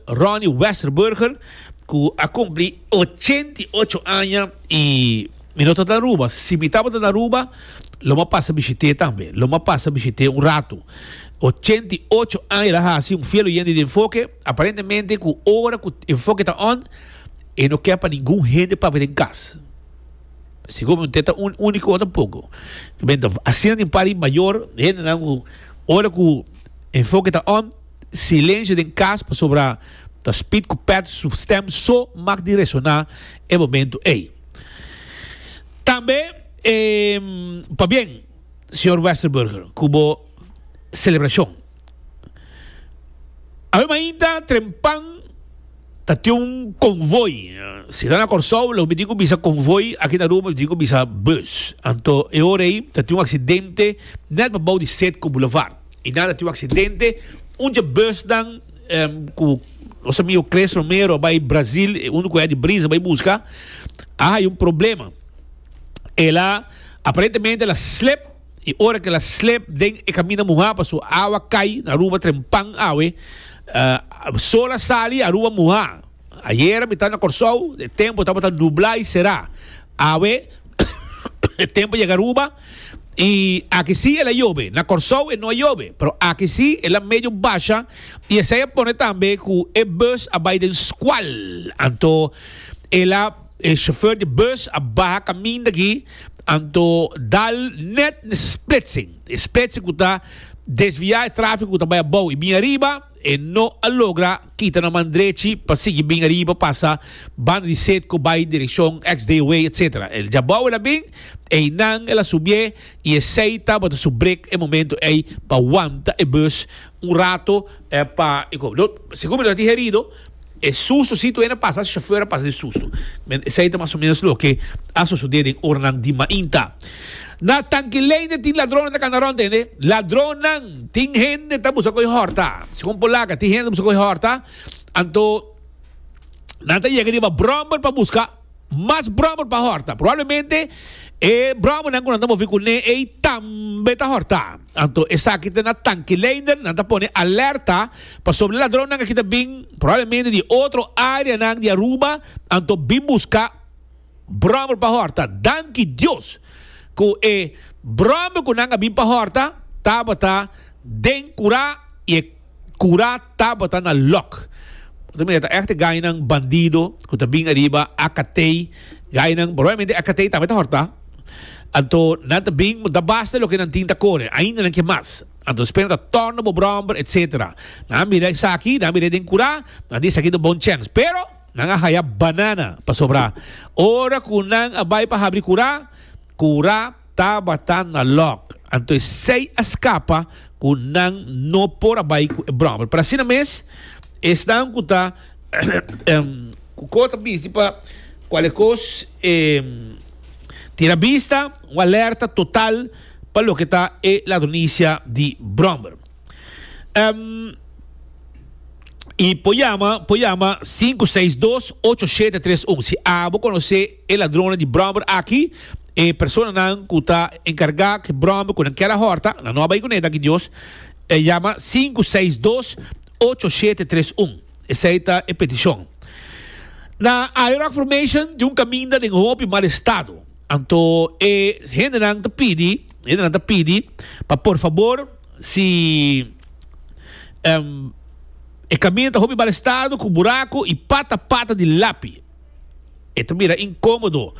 Ronnie Westerburger cu a cumpli ochenta y ocho aña y Mi no ta ta Aruba, si mi tabata na Aruba lo mi a pasa bishit'e tambe, lo mi a pasa bishit'e un ratu. Ochenta y ocho aña el a haci un fiel oyente di enfoke, aparentemente cu ora cu enfoke ta on e no ke pa ningun hende papia den cas. Segun mi te ta un unico o tampoco. Asina tin un par di mayor hendenan cu ora cu enfoke ta on. Silencio den cas pasobra ta spit cu pet su stem so mak di resona e momento ey. Tambe e pabien Señor Westerburger cu bo celebracion. Awe mainta trempan ta tin un convoy, si ta na Corsou lo mi tin cu bisa convoy aki na Aruba mi tin cu bisa bus, anto e ora ey ta tin un accidente net pabao di Setco Boulevard. I na ta tin un aksidente, un dje busnan ku nos amigu Cles Romero a bai Brazil, e unu kueha di brisa bai buska, a haya un problema. El a, aparentemente el a slep, i ora ku el a slep den e kaminda muhá, paso awa kai na Aruba trempan awe, sol a sali i Aruba muhá. Ayera mi taba na Kòrsou, e tempu tabata nublá i será. Awe e tempu yega Aruba. Y aki si el a yobe. Na Corsou e no a yobe, pero aki si el a medio basha y esey a pone tambe cu e bus a bay den scual. Anto el a e chauffeur di bus a baha caminda aki anto dal net n'e splitsing. E splitsing cu ta desvia e trafico cu ta bay abao y bin ariba e no a logra. Kita na man drechi pa sigui bin ariba pasa banda di set cu bay direccion Ex Day Away etc. El djabao el a bin, eynan el a subié y esey tabata su break e momento ey pa wanta e bus un rato pa e cob. Lo segun mi ta digerido e sustocito ey na pasa así, chauffeur a pasa di susto. Esey ta mas o menos loke a sucede den oranan di mainta. Na Tankileine tin ladronnan ta kanda rond tende ladronnan tin hende ta buska koe horta segun Polaca tin hende ta buska koe horta anto nan ta yega riba brommer pa buska mas brommer pa horta probablemente e brommer nan ku nan ta movi kune ei tambe ta horta anto esaki ta na Tankileine nan ta pone alerta pasobra e ladronnan aki ta bin probablemente di otro area nan di Aruba anto bin buska Brommer pa horta. Danki Dios cu e brommer cu nan a bin pa horta tabata den cura y e cura tabata na lock. Bo ta mira ta echte gainan bandido cu ta bin ariba Acatei. Gainan probablemente Acatei tambe ta horta. Anto nan ta bin bo ta basta loke nan tin ta core. Ainda nan kier mas. Anto esper nan ta torna bo brommer etc. Nan a mira esaki, nan a mira den cura, nan di esaki ta un bon chance. Pero. Nan a haya banana pasobra ora ku nan a bai pa habri kura, kura tabata na lòk. Anto e sei a skapa ku nan no por a bai ku e bròmel. Pero asina mes, esnan ku ta ku ko ta bisti pa kualke kos e tira bista, un alerta total pa loke ta e ladronisia di bròmel. Em, I por llama, por llama sinku seis dos ocho shete tres un. Si abo conoce e ladronnan di bromber aki, e personanan cu ta encarga cu bromber cu nan kier a horta, nan no a bay cu ne, danki Dios, e llama sinku seis dos ocho shete tres un. Esey ta e peticion. Na Ayo Rockformation tin un caminda den hopi mal estado. Anto e hendenan ta pidi, hendenan ta pidi pa por fabor si e kaminda ta hopi balestado ku buraku i pata pata di lapi e ta bira inkomodo.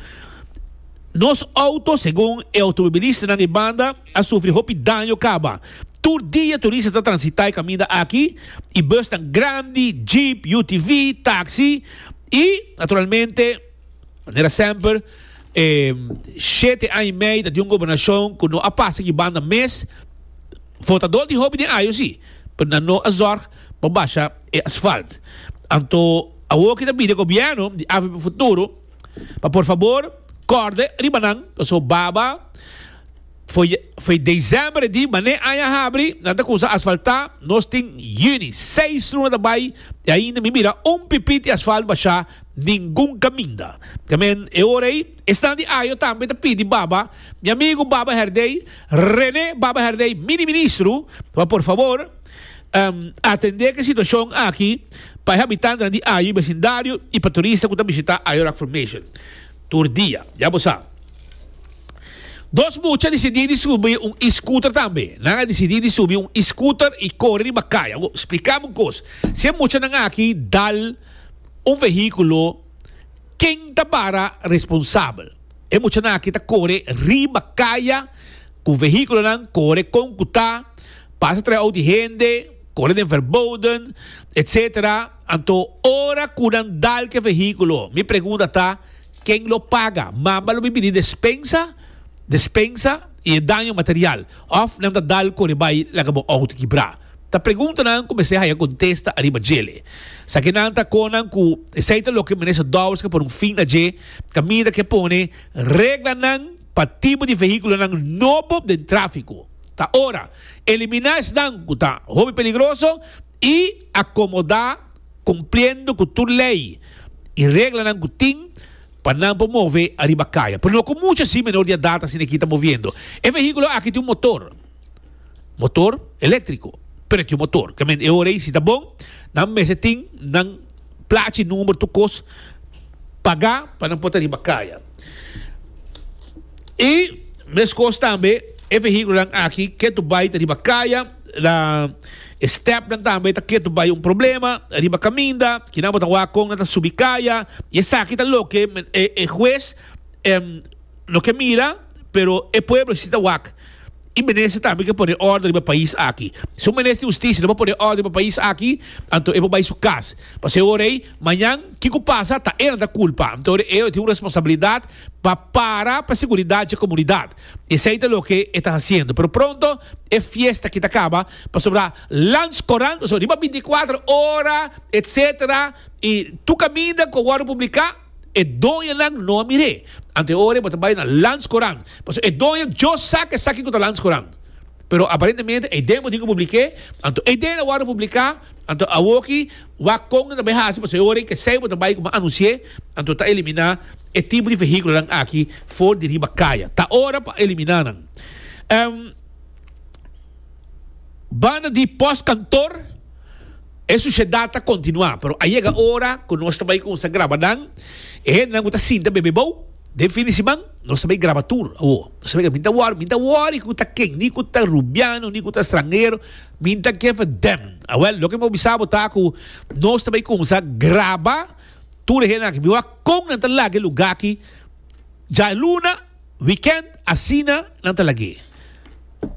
Nos outo, segun e outomobilistanan e banda, a sufri hopi daño kaba. Tur dia turista ta transita e kaminda aki i busnan grandi, jeep, UTV, taksi i naturalmente. Manera semper, e shete aña y mei ta di un gobernacion cu no a pasa aki banda mes. Votador di hopi den ayo si, pero nan no a zorg pa basha e asfalt. Anto awor ki ta bida gobierno di avp Futuro pa por fabor corde riba nan pasobra baba. Fo'i december e di, man'e aña habri nan ta cusa asfalta, nos tin juni, seis luna ta bay y ainda mi mira un pipiti asfalt basha ningun caminda. Camen e ora ey, esnan di Ajo tambe ta pidi baba, mi amigo Baba Herdey, Rene Baba Herdey, mini ministro, pa por favor atende ke situacion aki pa e habitantenan di Ajo y becindario y pa turista cu ta bishita Ajo Rock Formation. Tur dia, ya bo sa. Dos mucha a disidí di subi un e-scooter tambe. Nan a disidí di subi un e-scooter i kore riba kai. Awo, spliká mi un kos. Si e muchanan aki dal un vehíkulo, ken ta para responsabel? E muchanan aki ta kore riba kaya ku vehíkulonan kore kon ku ta, pasa trae out di hende, kore den Verboden, etsetera. Anto ora cu nan dal ke vehiculo, mi pregunta ta, ken lo paga? Mamba lo bibidi despensa, despensa y e daño material of nan ta dal core bay laga bo auto kibra? Ta preguntanan cu mester haya contesta ariba djele. Sa ke nan ta conan cu esey ta loke Minister Dowers ke pone un fin na dje caminda ke pone reglanan pa tipo di vehiculonan nobo den trafico. Ta ora elimina esnan cu ta hopi peligroso y. Akomodá kumpliendo ku tur lei i reglanan ku tin pa nan por move ariba kaya, pero no ku mucha así menor di edat asina aki ta moviendo. E vehíkulo aki tin un motor, motor eléktriko, pero e tin un motor. Kamente e ora ei, si ta bon, nan mester tin nan plachi i number tur kos pagá pa nan por ta riba kaya. I meskos tambe e vehíkulonan aki ke tur bai ta riba kaya. Na e stèpnan tambe ta ketu bai un problema riba kaminda, kinan bo ta wak kon nan ta subi kaya, i esaki ta loke e hues no ke mira, pero e pueblo si ta wak i minister tambe ke pone òrdu riba e pais aki. Si un minister di hustisia no por pone òrdu riba e pais aki, anto e por bai su kas, pasobra e ora ei mañan kiko kulpa ta e nan ta kulpa, anto e tin un responsabilidat pa para pa seguridat dje komunidat. Esei ta loke e ta hasiendo. Pero pronto e fiesta aki ta kaba, pasobra Lans Korant, pasobra riba bintiakuater ora, etsetera, i tur kaminda ku a wòrdu publiká, e doñonan no a mir'é. Ante ora e bo ta bai na Lans Korant, pasobra e doño djò sa ke sa kiko ta Lans Korant. Pero aparentemente eiden bo tin ku publik'é, anto eiden a wòrdu publiká, anto awoki, Wak kon ta bay hasi pasobra e ora ke esey bo ta bay kuma anunsié, anto ta eliminá e tipo di vehíkulonan aki for di riba kaya. Ta ora pa eliminá nan. Em banda di pòstkantor e sushedat ta kontinuá, pero a yega ora ku nos ta bay kuminsá graba nan. E hendenan ku ta sinta bebe bou den fin di siman nos ta bay graba tur awor. Mi ta wòri, mi ta wòri ku ta ken, ni ku ta rubiano ni ku ta stranhero. Min ta keffe dem. Awel, loke mi a bisa bo ta ku nos ta bay kumsa graba tur e hende aki. Mi wak kon nan ta laga e luga aki djailuna, wikènt, asina nan ta lag'é.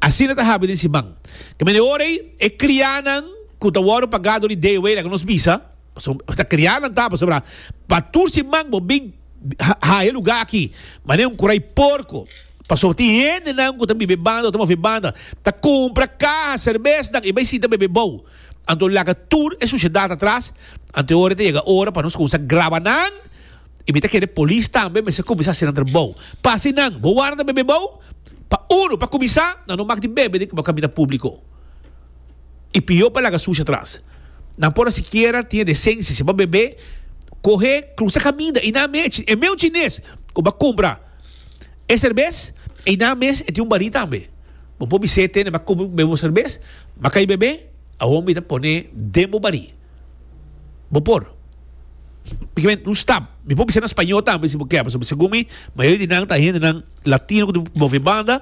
Asina ta habia den siman. Kaminda e ora ei, e krianan ku ta wòrdu pagá dor di Dayaway, laga nos bisa. Pasobra bo ta kria lanta, pasobra pa tur siman bo bin haya lugá aki, manera un kurai porko. Pasobra tin hendenan ku ta biba e banda, ku ta move e banda, ta kumpra kaha serbesnan i bai sita bebe bou. Anto laga tur e sushedat atras, anto e ora ta yega ora pa nos kuminsá graba nan i mi ta kere polis tambe mester kuminsá hasi nan trabou pa hasi nan. Bo warda bebe bou? Pa unu, pa kuminsá, nan no mak di bebe den kaminda públiko. I pió pa laga sushi atras. Nan por a sikiera tin e desensia si bo a bebe kohe krusa kaminda i nan mech e meu chines ku bo a kumpra e serbes i nan mes e tin un barí tambe. Bo por bis'é tene bo a kumpra bebe bo serbes ma ka i bebe awor mi ta poné den bo barí. Bo por pikamente un stap mi por bis'é na spañó tambe si bo kè pasobra segun mi mayoria di nan ta hendenan latino ku ta move banda.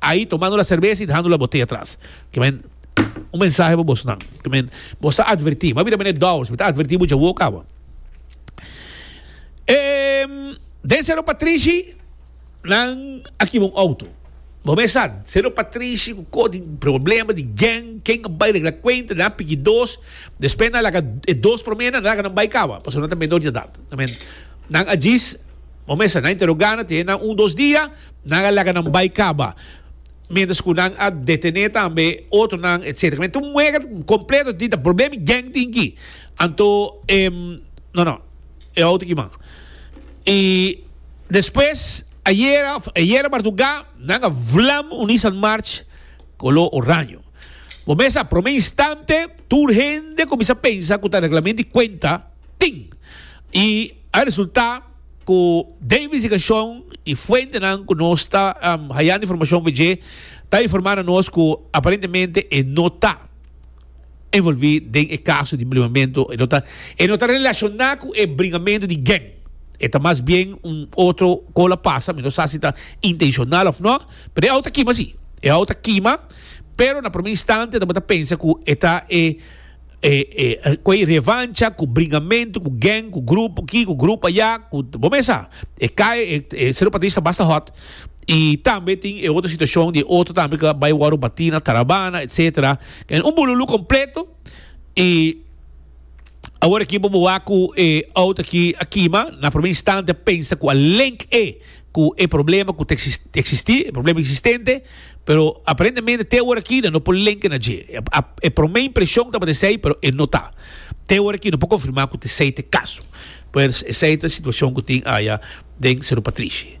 Ahi tomando la serbesa y dehando la botella atras. Kimen un mensahe pa bosnan. Kimen bos ta adverti. Mabira meneer Dowers, mi ta adverti bo djawoe ok awa. Ehm, den Cerro Patrishi nan a kiba un auto. Bo mes sa, Cerro Patrishi cu koor di problema di gang, ken a bay regla cuenta, nan a piki dos, despues nan a laga e dos prome, nan a laga nan bay kawa, pasobra nan ta menor di edad. Kimen nan a djis, bo mes sa, nan a interoga nan, te nan un dos dia, Nan a laga nan bai kaba. Mientras cu nan a detene tambe otronan, etc. Mi tin un mueger completo di ta problem y gang tin aki. Anto, e, no, no, e auto aki man. Y despues, ayera, ayera marduga, nan a vlam un Nissan March color oraño. Bo mes sa, prome instante, tur hende cuminsa pensa cu ta reglamento di cuenta, tin. Y a resulta. ku den investigashon i fuentenan ku nos ta hayando informashon over dje ta informá na nos ku aparentemente e no ta envolví den e kaso di blimamentu, e no ta e no ta relashoná ku e bringamentu di geng, e ta mas bien un otro kola pasa, mi no sa si ta intenshonal òf nò, pero e au ta kima si, e au ta kima, pero na prome instantia ta bo ta pensa ku e ta e. cu e revancha, cu bringamento, cu gang, cu grupo aki, cu grupo aya, cu bo mes sa. E cai e e Cerro Patris ta basta hot y tambe tin e otro situacion di e otro tambe cu a bay wor bati na Tarabana etcetera. Un bululu completo y awor aki bo wak cu e out aki a kima, na primer instante a pensa cu a link e. cu e problema cu ta existi, e problema existente, pero aparentemente te ora aki nan no por lenke na dje. E prome impresion tabata esey, pero e no ta. Te ora aki no por confirma cu ta esey ta e caso. Pues esey ta e situacion cu tin aya den Cerro Patrishi.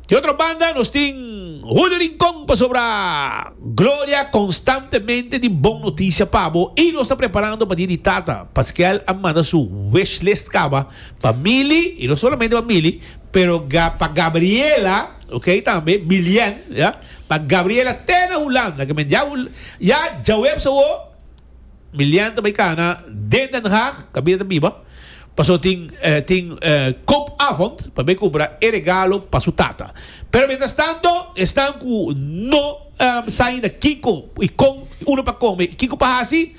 Di otro banda nos tin Julio Rincon pasobra Gloria constantemente di bon noticia pa bo y nos ta preparando pa dia di tata. Pasquel a manda su wish list caba pa Mili y no solamente pa Mili, Pero ga pa Gabriela, ok, tambe Milian, ya, pa Gabriela te na Hulanda, ke men ya Hul, ya Djawebs awo, Milian ta bai kana den Den Haag, kabida ta biba, paso tin, eh, tin, eh, koopavond pa bai kumpra e regalo pa su tata. Pero mientras tanto, esnan ku no, ehm, sa ainda kiko i kon, unu pa kome i kiko pa hasi,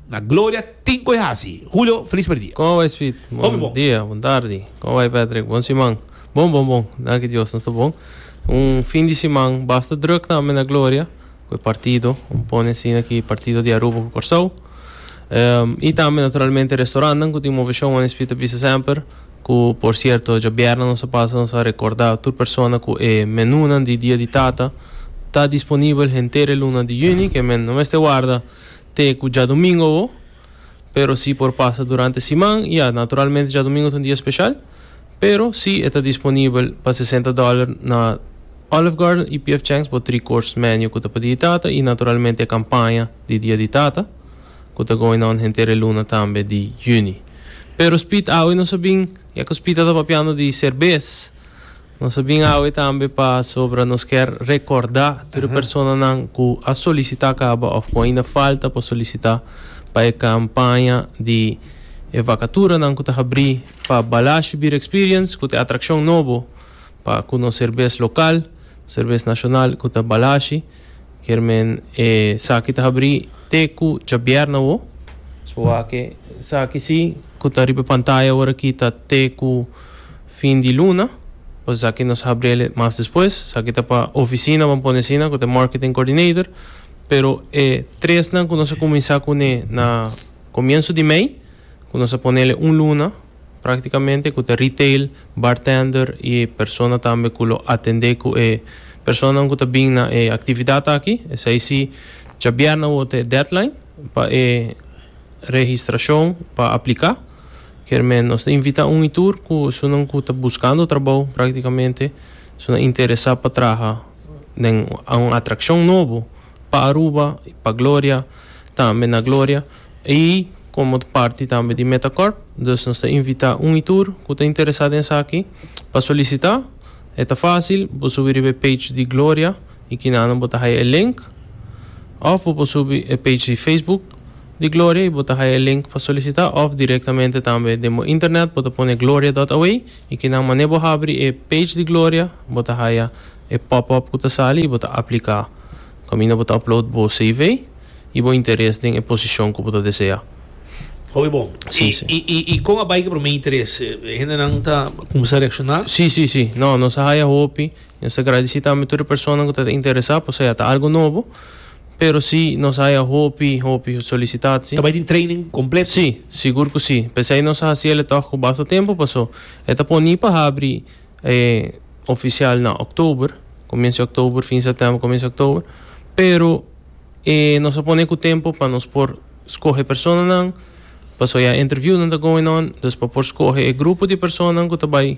Na gloria tin cu e haci. Julio, feliz primer dia. Como bai Speed? Bon dia, bon tardi. Como bai Patrick? Bon siman. Bon, bon, bon. Danki Dios, nos ta bon. Un fin di siman basta druk tambe na Gloria cu e partido. Bo pone asina ki partido di Aruba cu Corsou. Y tambe naturalmente e restaurantnan cu tin moveshon, wans Speed ta bisa semper. Cu por cierto djabièrnè nos a pasa, nos a recorda tur persona cu e menunan di dia di tata ta disponibel henter e luna di juni. Ke men no mester warda. te ku djadumingu awo, pero si por pasa durante siman, ya, naturalmente djadumingu ta un dia speshal, pero si e ta disponibel pa sesenta dòler na Olive Garden i PF Chang's bo Three Course Menu ku ta pa Dia di Tata i naturalmente e kampaña di Dia di Tata ku ta going on henter e luna tambe di yüni. Pero Speed awe nos a bin, ya ku Speed a ta papiando di serbes, Nos a bin awe tambe pasobra nos kier rekorda tur e personanan ku a solisitá kaba òf ku ainda falta pa solisitá pa e kampaña di e vakaturanan ku ta habrí pa Balashë Beer Experience ku ta e atrakshon nobo pa ku nos serbes lokal, serbes nashonal ku ta Balashë. Germen, E saki ta habri te ku djabièrnè awo. Suake, Saki si ku ta riba pantaya ora aki ta te ku fin di luna, por esaki nos habriel mas despues. Saki ta pa ofisina ban pone asina ku ta e marketing coordinator. Pero e tresnan ku nos a kuminsá kuné na komienso di mei, ku nos a ponel un luna. Práktikamente ku ta retail, bartender i e persona tambe ku lo atendé ku e personanan ku ta bin na e aktividat aki. Esei si djabièrnè awor ta e deadline pa e registrashon pa apliká. Kier men nos ta invitá un i tur ku esunnan ku ta buskando trabou, práktikamente esunnan interesá pa traha den un atrakshon nobo pa Aruba, pa Gloria, tambe na Gloria. I komo ta parti tambe di Metacorp, dus nos ta invitá un i tur ku ta interesá den esaki pa solisitá. E ta fásil, bo por subi riba e page di Gloria i kinanan bo ta haya e link. Òf bo por subi e page di Facebook di Gloria i bo ta haya e link pa solisitá òf direktamente tambe den bo internet bo ta pone Gloria dòt away i kinan manera bo habri e page di Gloria bo ta haya e pòp-òp ku ta sali i bo ta apliká. Kaminda bo ta upload bo CV y bo interes den e posicion cu bo ta desea. Oke bon. Sí, sí. Y con a bay cu e prome interes? E hendenan ta cuminsa reacciona? Sí, sí, sí. No, nos a haya hopi. Y nos ta gradici tambe tur e personanan cu ta interesa, pasaya ta algo nobo. Pero sí, nos a haya hopi, hopi solicitaci. Ta bay tin training completo? Sí, sigur cu sí. P'esey nos a haciel e tog cu basta tempo, paso e ta poni pa habri E ofisial na October, comiensa October, fin September, comiensa October, pero e nos a pone cu tempo pa nos por scoge personanan, paso ya interviewnan ta going on, dus pa por scoge e grupo di personanan cu ta bay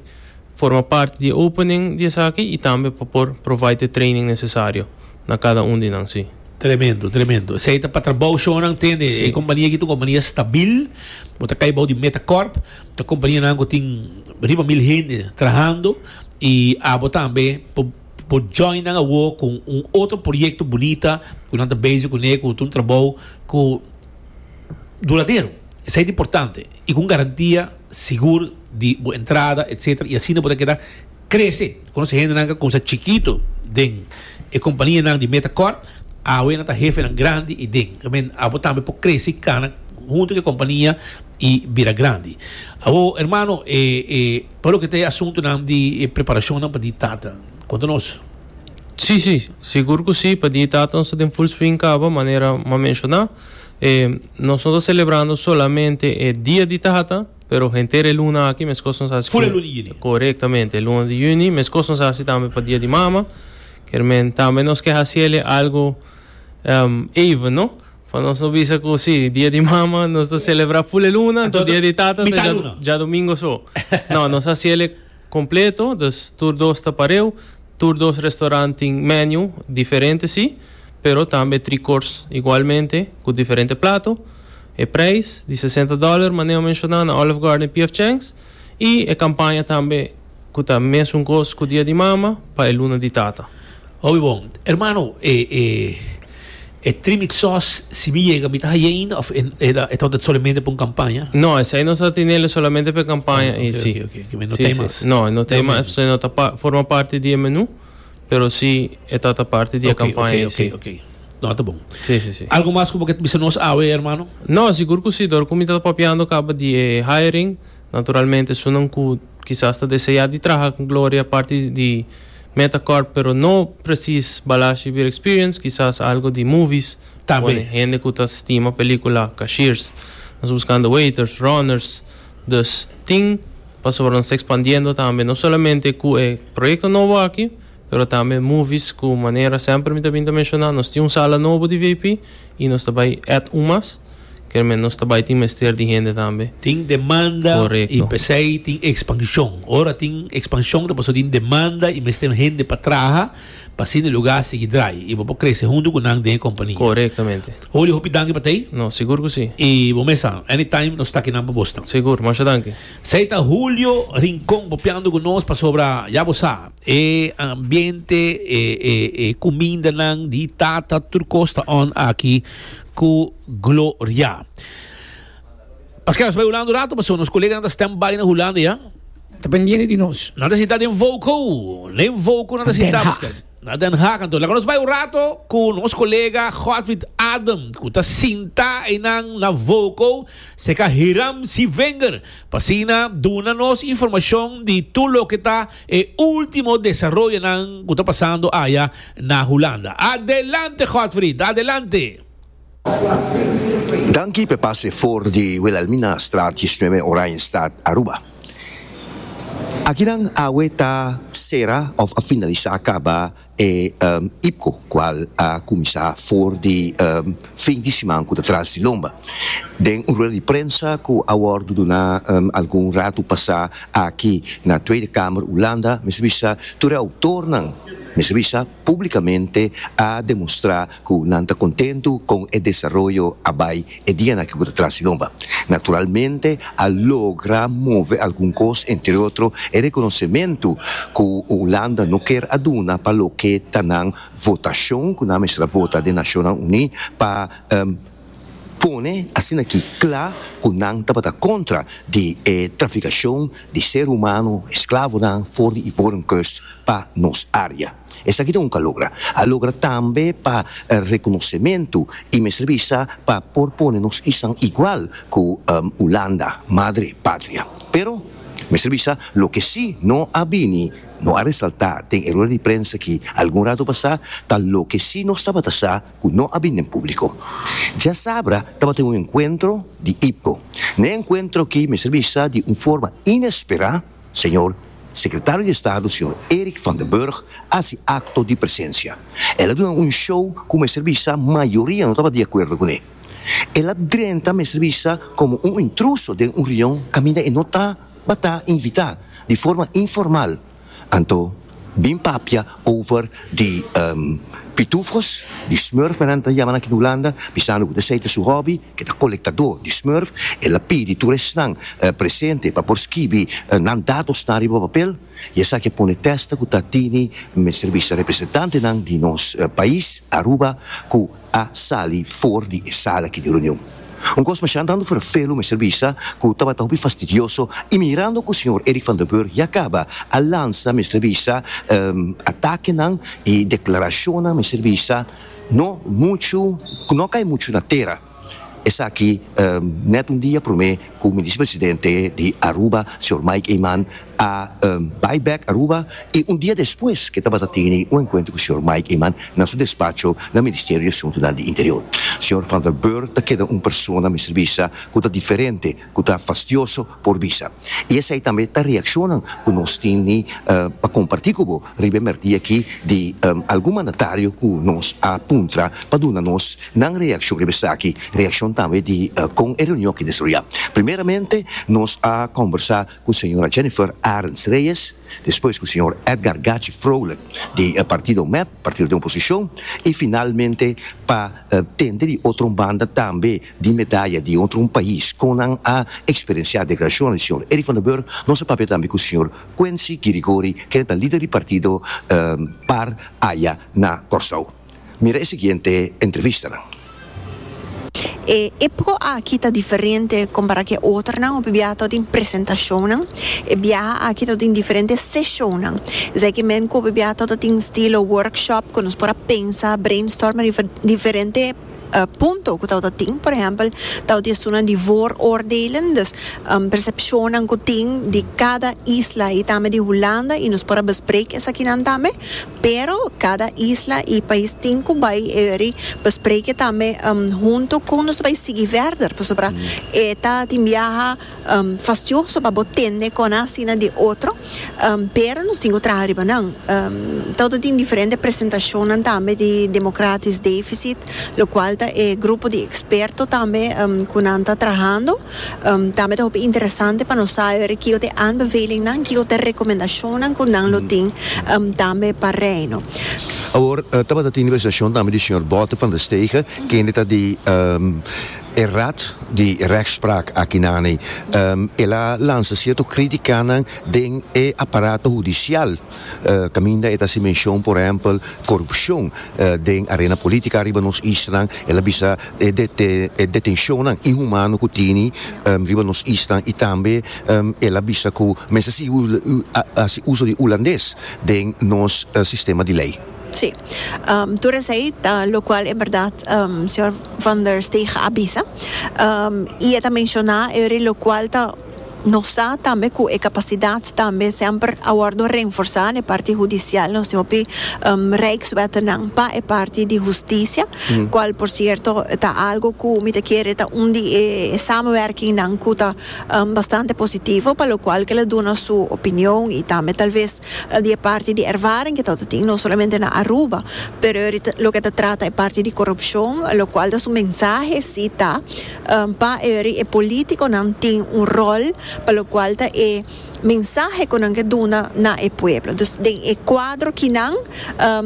forma parti di e opening di esaki y tambe pa por provide e training necesario na cada un di nan, si. Tremendo, tremendo. Esey ta pa trabao shonan tende. E compania aki ta un compania stabil. Bo ta cay bao di Metacorp. Ta kompanianan ku tin riba mil hende trahando i abo tambe por join nan awo kon un otro proyekto bunita ku nan ta bezi kuné ku ta un trabou ku duradero. Esei ta importante i ku un garantia sigur di bo entrada etsetera i asina bo ta keda. Crece, cu nos hendenan ka cuminsa chikito den e companianan di Meta Corp, awe nan ta hefenan grandi y den men abo tambe por crece y cana hunto cu e compania y bira grandi. Awor, hermano, e, e, pa loke ta e asuntonan di e preparacionnan pa di Tata, cuenta nos. Sí, sí, sigur cu sí, pa di Tata nos ta den full swing caba, manera m'a menciona. E, nos no ta celebrando solamente e Dia di Tata. Pero henter e luna aki meskos nos hasi ku. Fora e luna di yüni. Korektamente, e luna di yüni meskos nos hasi tambe pa Dia di Mama, kermen tambe nos ke hasi el e algu even no, pa nos no bisa ku si Dia di Mama nos ta selebrá ful e luna, anto Dia di Tata ta djadumingu so. No, nos hasi el e. Completo, dus tur dos ta pareu. Tur dos restaurant tin menu diferente si, pero tambe tri cours igualmente cu diferente plato. E prijs di sesenta dollar Maneo menciona na Olive Garden PF Chang's y e campaña tambe cu ta mesun cos cu Dia di Mama pa e Luna di Tata. Hopi bon. Hermano, e, e, e trimit sos, si mi yega, mi ta haye ainda of e, e, ta e ta solamente pa un campaña? No, esei nos a tenelo solamente pa e campaña, Oh, e oké, si. oké, oké, oké, mi no si, ta si. mas. No, e no ta Del mas, menu. esei no ta pa, forma parti di e menu, pero si e ta ta parti di e Oké, campaña, oké, e si. oké, oké. No, ta bon. Si, si, si. Algo mas cu bo kier ta bisa nos awe, hermano? No, sigur cu si. Dor cu mi ta papiando caba di e hiring, naturalmente esun nan cu kisas ta deseá di traha ku Gloria parti di Metacorp pero no presis Balashi bir experience, kisas algu di movies, Ta be. one hende ku ta stima pelikula, cashiers, nos buskando waiters, runners, dus tin pasobra nos ta ekspandiendo tambe no solamente ku e proyekto nobo aki pero tambe movies ku manera semper mi ta bin ta menshoná nos tin un sala nobo di vip i nos ta bai èt un mas. Kermén, nos ta bai tin mester di hende tambe. Tin demanda i p'esei tin ekspanshon. Ora tin ekspanshon ta pasó tin demanda i mester hende pa traha pa asina e lugá sigui drai i bo por krese huntu ku nan den e kompania. Korektamente. Holly, hopi danki pa tei. No, sigur ku si. I bo mes a. Anytime nos ta aki nan pa Boston. Sigur. Masha danki. Sei ta Julio Rincon bopiando ku nos pasobra ya bo sa e ambiente e kumindanan di tata tur kos ta on aki. ku Gloria. Paskel nos bai Hulanda un rato, paso nos koleganan ta stand by na Hulanda ya. Ta pendiente di nos. Nan ta sinta den Vouco, den Vouco nan ta sinta paskel. Na Den Haag anto. Laga nos bai un rato ku nos kolega Godfrid Adam ku ta sinta einan na Vouco serka Hiram C. Vinger pa asina duna nos informashon di tur loke ta E ultimo desaroyonan cu ta pasando aya na Hulanda. Adelante Godfrid! Adelante! Danki p'e pase for di Wilhelminastraat diesnuebe Oranjestad Aruba. Akinan awe ta cera of a finalisa caba E IPCO, cual a cuminsa for di fin di siman cu ta tras di lomba, den un rueda di prensa cu a wordo duna algun rato pasa aki na Tweede Kamer Hulanda, mester bisa tur e autornan, mester bisa publicamente a demonstra cu nan ta contento con e desaroyo a bay E dianan ke ku ta tras di nomba, naturalmente a logra move algun kos, entre otro e rekonosementu ku Hulanda no ker a duna pa loke ta nan votashon ku nan mester a vota den Nashonnan Uní pa pone asina ki kla ku nan tabata kontra di e trafikashon di ser humano, esklavonan, for di Ivoren Kust pa nos área. Esaki ta un kalogra. A logra tambe pa rekonosementu i mester bisa pa por pone nos kisan igual ku Hulanda, madre patria. Pero, mester bisa loke si no a bini, no a resaltá den e rueda di prensa aki algun ratu pasá, ta loke si nos tabata sa ku no a bin den públiko. Djasabra tabatin un enkuentro di IPCO. Na e enkuentro aki mester bisa di un forma inesperá, Señor Secretario di Estado Señor Eric van den Burg a haci acto di presencia. El a duna un show cu mester bisa mayoria no taba di acuerdo cu ne. El a drenta mester bisa como un intruso den un reunion caminda e no taba ta invita di forma informal. Anto Bin papia over di pitufos, di smurf nan ta yamanan aki na Hulanda, bisando ku ta esei ta su hobby, ke ta kolektadó di smurf. El a pidi tur esnan presente pa por skibi nan datosnan riba papel, i esaki a pone tèsta ku ta tini mester bisa representantenan di nos pais, Aruba, ku. a sali for di e sala aki di reunion. Un kos masha dando ferfelu mester bisa ku tabata hopi fastidioso i mirando ku señor Eric van der Burg ya kaba a lansa mester bisa atakenan i deklarashonnan mester bisa no muchu ku no kai muchu na tera. Esaki nèt un dia promé ku mi Visepresidente di Aruba señor Mike Eman a bai bek Aruba i un dia despues ke tabata tene un enkuentro ku señor Mike Eman na su despacho na Ministerio di Asuntunan di Interior. Señor Van der Burg ta keda un persona mester bisa ku ta diferente, ku ta fastioso por bisa. I esei tambe ta reakshonan ku nos tin ni pa kompartí ku bo riba e mèrkdía akí di algun mandatario ku nos a puntra pa duna nos nan reakshon riba esaki, reakshon tambe di kon e reunion akí desroyá. Primeramente nos a kòmbersá. cu señora Jennifer Arends Reyes, despues cu señor Edgar Gachi Vrolijk di e partido mep, partido den oposicion, y finalmente pa tende di otro banda tambe di medaya di otro pais con nan a experiencia declaracionnan di señor Eric van der Burg, nos a papia tambe cu señor Quency Guirigori, kende ta lider di partido par aya na Corsou. Mira e siguiente entrevistanan. E epoca aki ta diferente compara cu e otronan, hopi biaha todo tin presentacionnan, e biaha aki todo tin diferente sesionnan, esey ki men cu hopi biaha todo tin estilo workshop cu nos por a pensa, brainstorm riba diferente punto cu tabata tin, por ehempel tabata estunan di vooroordelen, dus percepcionnan cu tin di cada isla y tambe di Hulanda y nos por a besprek esakinan tambe Pero cada isla y pais tin cu bay euri bespreke tambe hunto con nos ta bay sigui verder pasobra e ta tin biaha fastioso pa bo tende con asina di otro pero nos tin cu traha riba nan todo tin diferente presentacionnan tambe di democratis deficit locual ta e grupo di experto tambe cu nan ta trahando Tambe ta hopi interesante pa nos sa hopi kiko ta e aanbevelingnan, kiko ta e rekomendashonnan ku nan lo tin tambe pa Reino. Awor, tabata tin representashon tambe di señor Botte van der Stege, kende ta di e Raad di Rechtsspraak aki nani. El a lansa sierto kritikanan den e aparato hudisial. Caminda e ta haci mencion, por ehempel, corupcion den arena politica riba nos islan. El a bisa e detencionnan inhumano cu tini riba nos islan y tambe el a bisa cu men sa sigui haci uso di Hulandes den nos sistema di ley. Sí. Tur esey ta locual en berdad señor Van der Stegen a bisa y e ta menciona e ori locual ta. Nos sa tambe cu e capacidad tambe semper a wordo renforsa n'e parti hudicial, nos tin hopi Rijkswettenang pa e parti di husticia, cual por cierto ta algo cu mi ta kere ta un di e samenwerkingnan cu ta bastante positivo, pa lo cual kel a duna su opinion y tambe tal vez di e parti di ervaring cu ta tin no solamente na Aruba, pero loke ta trata e parti di corupcion, lo cual ta su mensahe si ta. Pa eri e politiconan tin un rol pa locual ta e mensahe cu nan ke duna na e pueblo. Dus den e cuadro kinan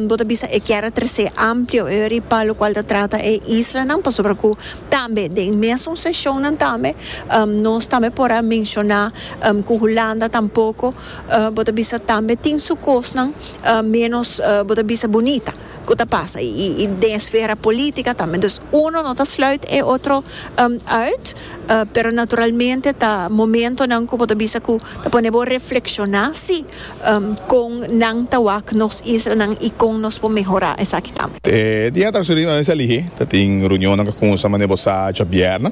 bo ta bisa e kier a trece amplio eri pa locual ta trata e islanan pasobra cu tambe den mesun sesionnan tambe nos tambe por a menciona cu Hulanda tampoco bo ta bisa tambe tin su cosnan menos bo ta bisa bunita. ku ta pasa i i den esfera politika tambe dus uno no ta sluit e otro uit pero naturalmente ta momentonan ku bo ta bisa ku ta pone bo reflekshoná si kon nan ta wak nos islanan i kon nos por mehorá esaki tambe. E dia atrás tur e mes a lihé ta tin reunionnan ku a kuminsa manera bo sa djabièrnè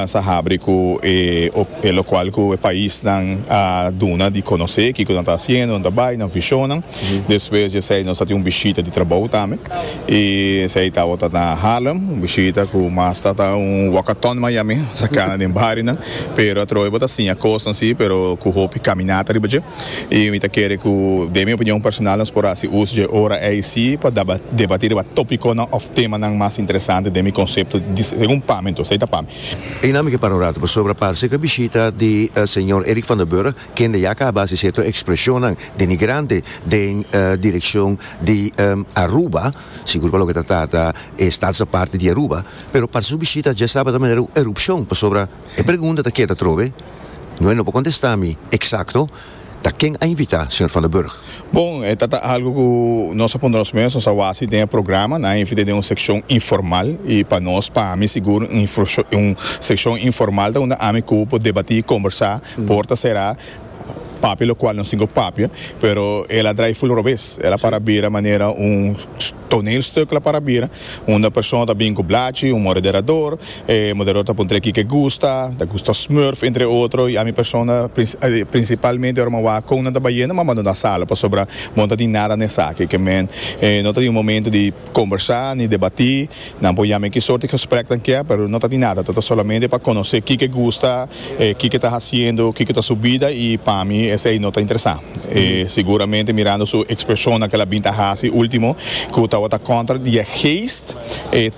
sa habri ku e e lokual ku e paisnan a duna di konosé kiko nan ta hasiendo nan ta bai nan vishonnan Despues djesei nos ta tin un bishita di trabou tambe y esei tabata na Harlem, un bishita cu mas ta ta un walkathon Miami, ta cana den barionan, pero atrobe bo ta siña cosnan si, pero cu hopi caminata riba dje. Y mi ta kere cu, den mi opinion personal, nos por haci uso dje ora ei si pa debati riba topiconan of temanan mas interesante den mi concepto, segun pa mi anto, esei ta pa mi. Eina mi ke para un rato pasobra parse cu e bishita di señor Eric Van der Burg kende ya caba haci cierto expresionnan denigrante den direccion di Aruba, sigur pa loke ta trata e stadsaparte di Aruba, pero parse su bishita djestaba ta manera un erupcion, pasobra e pregunta ta keda trobe, Noe no por contesta mi exacto ta ken a invita, señor Van der Burg? Bon, e ta ta algo ku nos a pone nos mes, nos a wasi den e programa, nan a invit'é den un sekshon informal, i pa nos, pa ami sigur un inforshon un sekshon informal ta unda ami ku por debatí, kombersá, porta será, papia lokual nos tin ku papia, pero el a drai full robes, el a para bira manera un. toneelstuk la para bira unda persona ta bin ku blachi, un moderador, e moderador ta puntr'é kiko e gusta, ta gusta smurf entre otro, i ami persona prinsipalmente ora mi a wak kon nan ta bai yendo mi a bandona sala pasobra bo no ta tin nada na esaki, ke men no ta tin un momento di kombersá ni debatí. Nan por yam'é ki sort di gesprek nan kier, pero no ta di nada, ta ta solamente pa konosé kiko gusta, kiko ta hasiendo, kiko ta su bida, i pa mi esei no ta interesá. E siguramente mirando su ekspeshonnan ku el a bin ta hasi último, ku tabata kòntra di e geest, e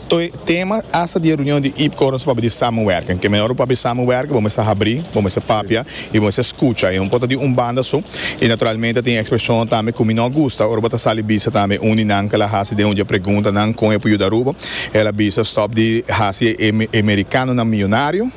tema asta di e reunion di Iip Courants pabia di samenwerking, ke mehor bo pabia di samenwerking, bo mester habrí, bo mester papia. I bo mester scucha i no por ta di un banda so. I naturalmente tin expresionnan tambe cu mi no a gusta ora bo ta sali bisa tambe un di nan ke el a haci den un dje pregunta nan con e por yuda Aruba. El a bisa stop di haci e mericanonan miyonario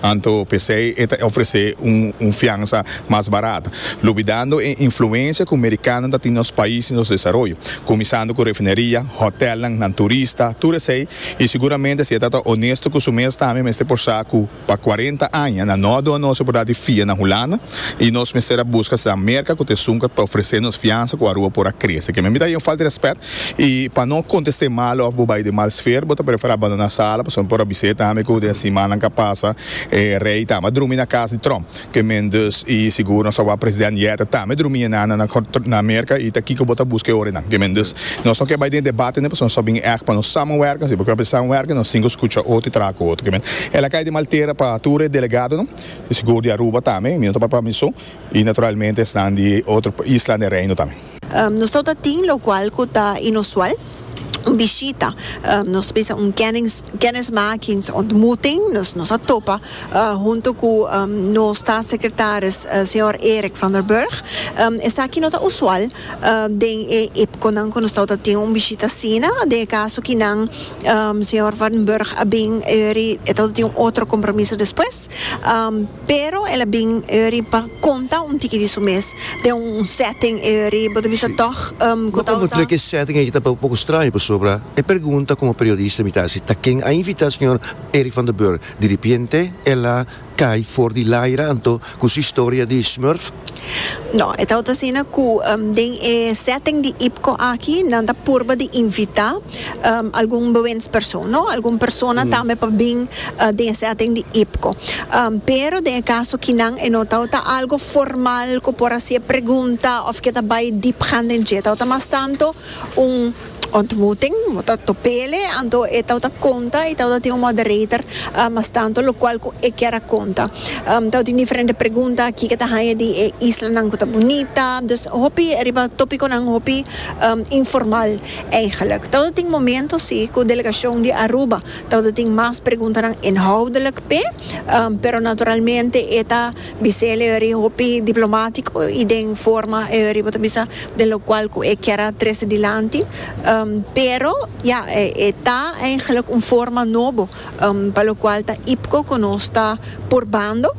anto pesey e ta ofrece un fiansa mas barat lubidando e influencia cu mericanonan ta tin nos pais i nos desaroyo cuminsando cu refineria, hotelnan, nan turista, tur esey i siguramente si e ta ta honesto cu su mes tambe mester por sa cu. Pa cuarenta aña na nodo anos a por dati fia na Hulanda y nos mester a busca sa merca cu ta esunca pa ofrece nos fiansa cu Aruba por a crece. Keme mi ta haci un falta de respet y pa no conteste mal of bo bay den mal sfeer bo ta prefer a bandona sala pasobra mi por a biseta tambe cu den simannan ca pasa e rey tambe a drumi na cas di Trump. Ke men dus i sigur nos a wak president yet tambe drumi e nana na na Amerika i ta kiko bo ta buska e orenan ke men dus nos no ke bai den e debate nde pasobra nos ta bin echt pa nos samenwerken si bo ke bai samenwerken nos tin ku skucha otro i traha ku otro ke men el a kai den maltera pa tur e delegadonan i sigur di Aruba tambe mi no ta bai pa Amiso i naturalmente esnan di otro isla den Reino tambe. Nos lo ta tin locual cu ta inusual, un bishita, nos bisa un kennismakings ontmoeting, nos nos a topa hunto cu nos Staats Secretaris Señor Erik van der Burg. Esaki no ta usual den e ipconan cu nos lo ta tin un bishita asina, den e caso ki nan Señor van Burg a bin e yori e lo ta tin un otro compromiso despues. Pero el a bin Uri pa konta un tiki di su mes den un setting Uri bo ta bisa tog ku ta ota. Ke setting aki ta un poko straño pasobra e pergunta komo periodista mi ta hasi ta ken a invitá señor Eric van den Burg? Di ripiente el a kai for di laira anto ku su historia di smurf. No, e ta ota asina ku den e setting di IPCO aki nan ta purba di invitá. um, algun bewindspersoon, no? Algun persona tambe pa bin uh, den setting di IPCO. Um, pero den e caso kinan e no tau ta algo formal ku por hasi e pregunta of ke ta bai diep gaan den dje. Tau ta mas tanto un ontmoeting, ta topele, anto e tau ta konta i tau ta tin un moderator uh, mas tanto lo kual ku e kier a konta. Um, tau tin diferente pregunta aki ke ta hanja di e islanan ku ta bunita, dus hopi riba topikonan hopi um, informal. Eigenlijk tabata tin momento si cu delegacion di Aruba tabata tin mas preguntanan inhoudelijk p'e, pero naturalmente e ta bis'el e ori hopi diplomatico y den forma e ori bo ta bisa den lo cual cu e kier a trece dilanti, pero ya e ta eigenlijk un forma nobo pa lokual ta IPCO ku nos ta purbando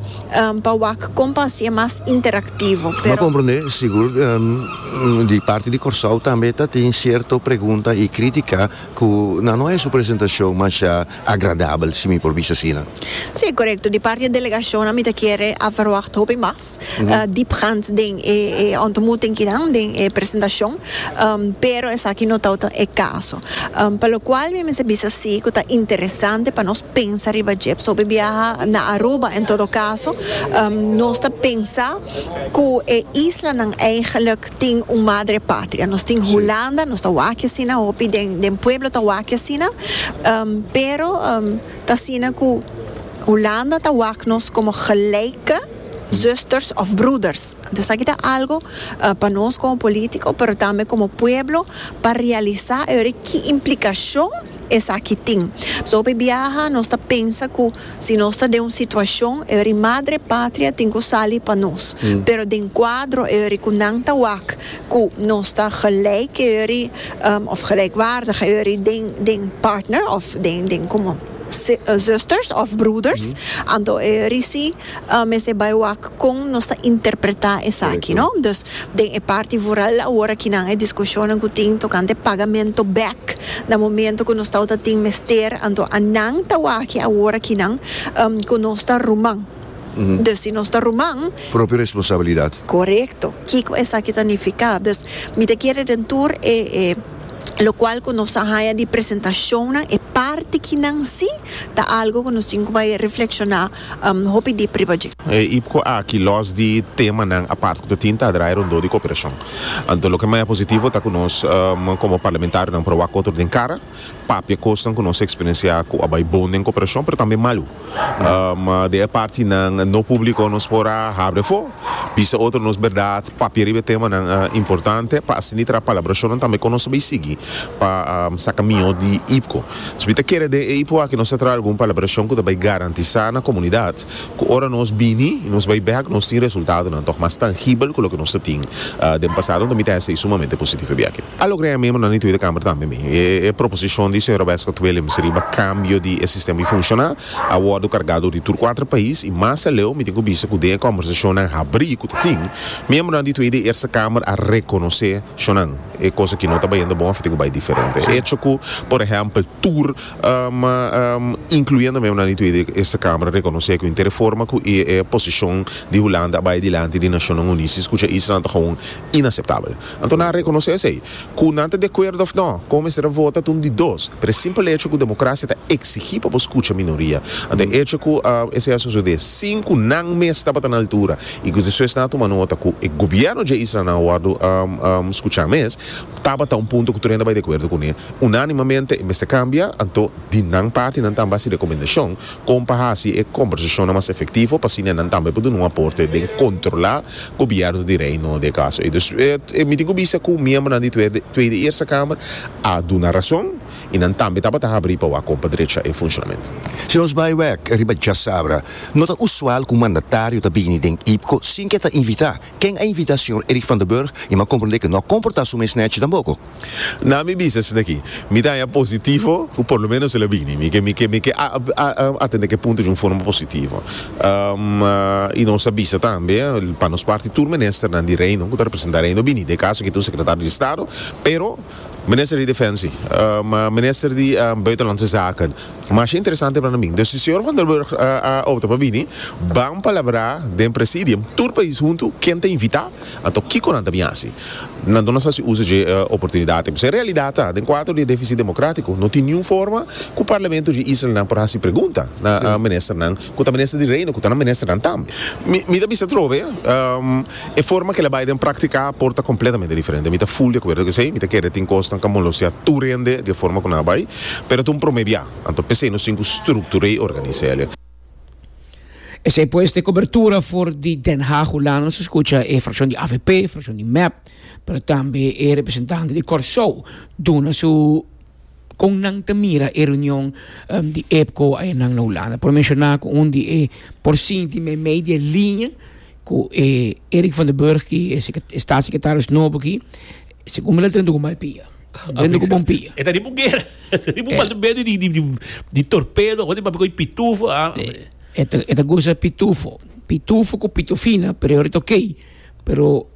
pa wak kon pa hasié mas interaktivo, pero. Bo a komprondé, sigur di parti di Kòrsou tambe ta tin sierto pregunta i krítika ku nan no haña su presentashon masha agradabel, si mi por bisa asina. Si, korekto. Di parti di e delegashonnan mi ta kere a verwagt hopi mas. diepgaand den e ontmoeting kinan, den e presentacion, pero esaki no ta otan e caso. Pa locual mi mester bisa si cu ta interesante pa nos pensa riba dje. Pasobra biaha na Aruba, en todo caso, nos ta pensa cu e islanan eigenlijk tin un madre patria. Nos tin Hulanda, nos ta wak asina, hopi den den pueblo ta wak asina, pero ta asina cu Hulanda ta wak nos como gelijke. zusters of broeders. Esaki ta algo pa nos como politico pero tambe como pueblo pa realisa e ora ki implicacion esaki tin. Pasobra hopi biaha nos ta pensa cu si nos ta den un situacion e ora madre patria tin cu sali pa nos. Pero den cuadro e ora cu nan ta wak cu nos ta gelijk e ora of gelijkwaardig e ora den partner of den como zusters of broeders anto e ora si. a mester bai wak kon nos ta interpretá esaki, no? Dus den e parti voral awor aki nan e diskushonnan ku tin tokante pagamentu bèk na momentu ku nos tabata tin mester, anto a nan ta wak awor aki nan ku nos ta ruman. Dus si nos ta ruman. Propio responsabilidat. Korekto. Kiko esaki ta nifiká? Dus mi ta kere den tur e e lokual ku nos a haña di presentashonnan e parti ki nan si ta algu ku nos tin ku bai reflekshoná. hopi di pribadjé. E ipco aki, los di temanan apart cu ta tin, ta draai rondó di cooperacion. Anto loke mai a positivo ta cu nos como parlamentarionan por a wak otro den cara, papia cosnan cu nos a experiencia cu a bai bon den cooperacion, pero tambe malu. Den e partinan no publico nos por a habri afo, bisa otro nos berdad, papia riba e temanan importante pa asina traha palabracionnan tambe con nos ta bay sigui pa saca mijo di ipco. So mi ta kere den e ipo aki nos ta traha algun palabrashon ku ta bai garantisá na komunidat ku ora nos bini i nos bai bèk nos tin resultadonan tòg mas tangibel ku loke nos a tin den pasado. Anto mi ta hèsei sumamente positif riba e aki. A logra e miembronan di Tweede Kamer tambe mi. E proposishon di señora Wescott Willems riba kambio di e sistema di funshoná a wòrdu kargá dor di tur kuater pais i mas aleu mi tin ku bista ku den e kòmbersashonnan habrí ku ta tin, miembronan di Tweede i Eerste Kamer a rekonosé shonnan. E cosa ki no ta bay yendo bon of tin cu bay diferente. E hecho cu, por ehempel, tur, incluyendo memnan di tur e Eerste Kamer, reconoce cu inter e forma cu e posicion di Hulanda a bay dilanti di Nacionnan Uní si scucha Israel ta gewoon inaceptabel. Anto nan a reconoce esey. Cu nan ta di acuerdo of no, con mester a vota ta un di dos. Pero e simpel hecho cu democracia ta exigi pa bo scucha minoria. Anto e hecho cu esey a sucede sin cu nan mes tabata na altura I ku esnan ta tuma nota ku e gobièrnu dje islanan a wòrdu skuchá mes, tabata un punto ku tur hende bai di akuerdo kuné unánimamente e mester kambia, anto di nan parti nan tambe hasi rekomendashon kon pa hasi e kombersashonnan mas efektivo pa asina nan tambe por duna un aporte den kontrolá gobièrnu di Reino de kaso ei. Dus mi tin ku bista ku miembronan di Tweede Eerste Kamer a duna rason i nan tambe tabata habri pa wak kompa drecha e funshonamento. Si nos bai wak riba djasabra, no ta usual ku mandatario ta bini den IPCO sin ke ta invitá. Ken a invitá señor Eric van den Burg i mi a komprondé ke no a komportá su mes nechi tampoko. Na mi bista esaki, mi ta haña positivo ku por lo menos el a bini. Mi ke mi ke mi ke atendé ke punto di un forma positivo. I nos a bisa tambe pa nos parti tur ministernan di Reino ku ta representá Reino bini. Dekaso ke ta un sekretario di Estado, pero. Minister di Defensie, ma Minister di Buitenlandse Zaken. Masha interesante para mi. Dus si Señor Van der Burg a opta pa bini, ban palabrá den Presidium, tur pais huntu, ken ta invitá, anto kiko nan ta bin hasi. Nan duna sa si uso dje oportunidad aki. P'esei realidad ta, den cuatro dia deficit democrático, no tin niun forma cu Parlamento dje islanan por hasi pregunta na Ministernan. Cu ta Minister di Reino, cu ta nan ministernan tambe. Mi, mi ta bisa trobe, ehm, e forma cu el a bay den practica por ta completamente diferente. Mi ta full di acuerdo cu esey. Mi ta kere tin cosnan ca molosia tur hende di e forma cu nan a bay, pero ta un prome bia. Anto p'esey nos tin cu structur'e y organiz'e. Esey pues t'e cobertura for di Den Haag, Hulanda. Nos a scucha e fraccion di avp, fraccion di mep, pero tambe e representante di Corsou duna su. Kon nan ta mira e reunion di EPCO ayenan na Hulanda? Por menshoná ku un di e por sinti meimei di e liña ku e Erik van den Burg aki, e statssekretaris nobo aki, segun mi lo drenta ku malpia. Drenta ku bon pia. E ta riba un guera, e ta riba un balde di torpedo, awe di papia ku e pitufo. E ta goza pitufo, pitufo ku pitufina, pero e orit oke, pero.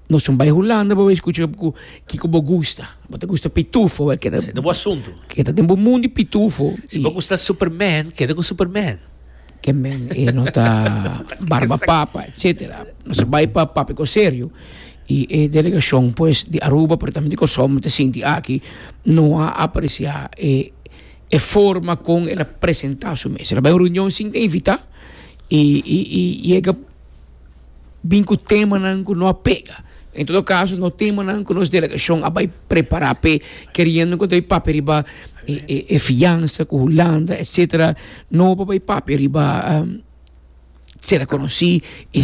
Nos un bai Hulanda bo bai escucha cu kico bo gusta. Bo ta gusta pitufo bai keda. Seta bo asunto. Keda den bo mundo di pitufo. Si bo gusta Superman keda cu Superman. Ke men e no ta barba papa etcetera. Nos a bai pa Papico serio y e delegacion pues di Aruba pero tambe di Corsou me ta sinti aki no a aprecia e e forma con el a presenta su mes. El a bai un reunion sin ta invita y yega. bin ku temanan ku no a pega. En todo kaso no temanan ku nos delegashon a bai prepará p'e, keriendo ku ta bai papia riba e fiansa ku Hulanda etsetera, no por bai papia riba ser rekonosí i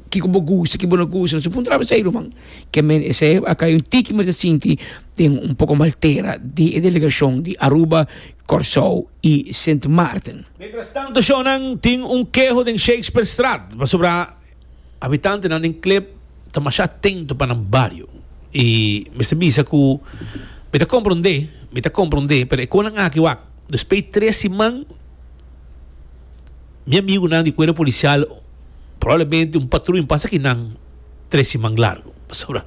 kiko bo gusta i kiko bo no gusta. No se puntra esei, ruman. Ke men esei akai un tiki men ta sinti den un poko maltera di e delegashon di Aruba. Kòrsou i Sint Maarten. Mientras tanto shownan tin un keho den Shakespearestraat pasobra habitantenan den Klip ta masha atento pa nan bario i mester bisa ku mi ta komprondé mi ta komprondé pero e konan aki wak despei tres siman mi amigunan di kuerpo polisial probablemente un patruña pasa aki nan tres siman largu pasobra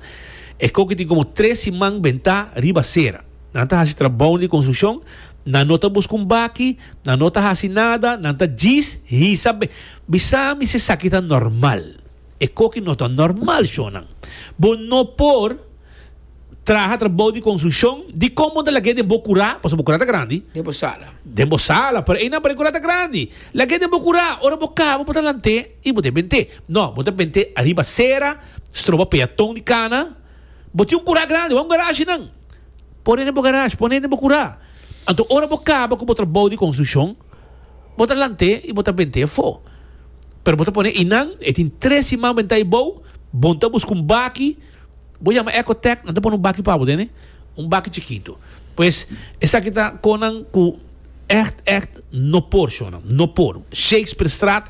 e koki tin komo tres siman bentá riba sera. Nan ta hasi trabou di konstrukshon, nan no ta buska un baki, nan no ta hasi nada, nan ta djis hisa. Be, bisa mi si esaki ta normal. E koki no ta normal, shonnan. Bo no por traha trabou di konstrukshon. Dikon bo ta lag'é den bo kurá? Pasobra bo kurá ta grandi. Den bo sala. Den bo sala, pero einan par'é kurá ta grandi. Lag'é den bo kurá. Ora bo kaba, bo ta lant'é i bo ta e bent'é. No, bo ta bent'é ariba sera, stroba peaton di kana. Bo tin un kurá grandi, wou un garashi nan? Pone den bo garage, pone den bo curá. Anto ora bo caba cu bo trabou di construccion, bo ta lant'e y bo ta bent'e afó. Pero bo ta pone y nan, e tin tres siman bentá y bou, bon ta busca un baki, bo yama Ecotec, nan ta pone un baki pa bo den, e un baki chikito. Pues, esaki ta conan cu echt, echt no por, shona, no por. Shakespearestraat.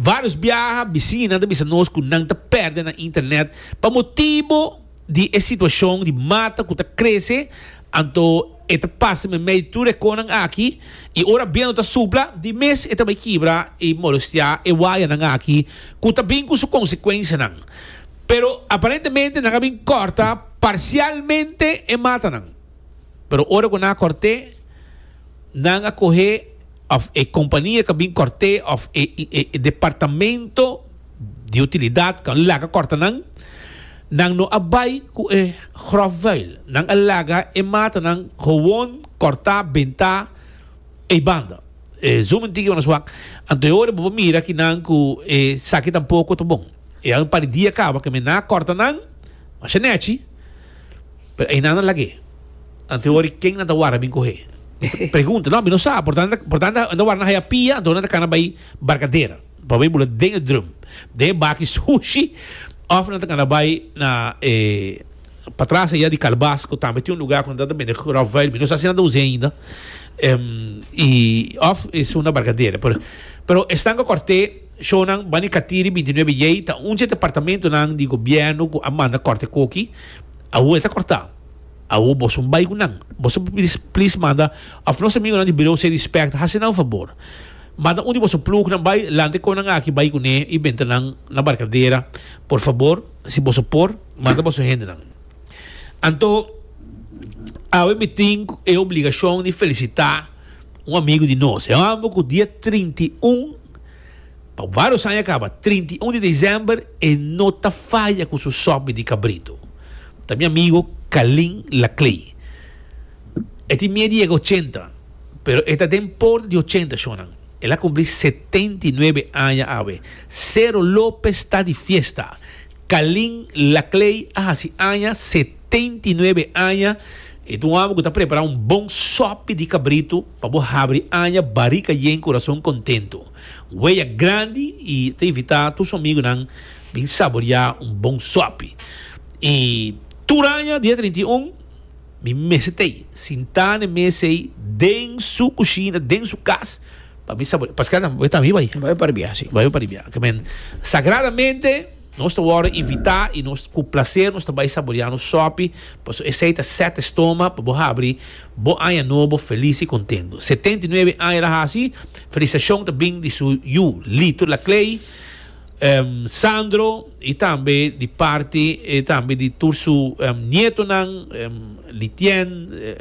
Varios biaha bisiñanan ta bisa nos cu nan ta perde nan internet pa motibo di e situacion di mata cu ta crece, anto e ta pasa medio tur e conan aki y ora biento ta supla di mes e ta bay kibra y molestia e wayanan aki cu ta bin cu su consecuencianan. Pero aparentemente nan a bin corta parcialmente e matanan. pero ora ku nan a kòrt'é, nan a koh'é òf e kompania ku a bin kòrt'é òf e e departamento di utilidat ku a laga kòrta nan, nan no a bai ku e gròf vùil, nan a laga e matanan gewòn kòrtá, bentá ei banda. E zoomen tiki manera swak, anto e ora bo ta mira ki nan ku esaki tampoko ta bon. E an un par di dia kaba ku men nan a kòrta nan, masha nèchi. Pero einan a lag'é. Anto wòrdi ken nan ta wara bin kohe? Pregunta, no, mi no sa. Portan, portan nan ta wara nan haya pia, anto nan ta kana bai barkader. Nan bai bula den e drum, den e baki sushi, òf nan ta kana bai na e patras eya di kalbas ku tambe tin un lugá ku nan ta bende ròfweil. Mi no sa si nan ta us'é ainda. I òf e sunda barkader. Pero esnan ku kòrt'é. Shownan Bani Katiri bintinuebe Yei ta un dje departamentunan di gobièrnu ku a manda kòrte koki. Awo e ta kòrtá. Awo boso bai ku nan. Boso por pidi plis manda òf nos amigonan di Birou Seri Spèk ta hasi nan fabor. Manda un di boso plugnan bai lante kon nan aki bai kuné i benta nan na Barkadera. Por fabor, si boso por, manda boso hendenan. Anto awe mi tin e obligashon di felisitá un amigu di nos. E hòmber ku dia trinta i un. Pa vários aña kaba, trinta i un di desember e no ta faya ku su sòpi di kabritu. Ta mi amigo Kalin Laclay. E tin mie di yega ochenta, pero e ta den por di ochenta shonnan. El a kumpli setenta i nuebe aña awe. Cero Lopez ta di fiesta. Kalin Laclay a hasi aña setenta. Teinti nuebe aña e ta un hòmber ku ta prepara un bon sòpi di kabritu pa bo habri aña barika yen kurason kontentu. Weya grandi i ta invitá tur su amigunan bin saboriá un bon sòpi. I tur aña dia trinta i un mi mester ta ei sintá n'e mes ei den su kushina, den su kas pa mi saboriá. Paskal tambe bo tambe bai. Bo bai paribiá, si, bo bai paribiá. Kiemen sagradamente. Nos ta wòrdu invitá i nos ku plaser nos ta bai saboreá nos sòpi, paso esei ta sèt estoma pa bo habri bo aña nobo felis i kontentu. Setenta i nuebe aña ta hasi felisitashon ta bring di su yu Lito Laclay, Sandro i tambe di parti tambe di tur su nietonan, Litien,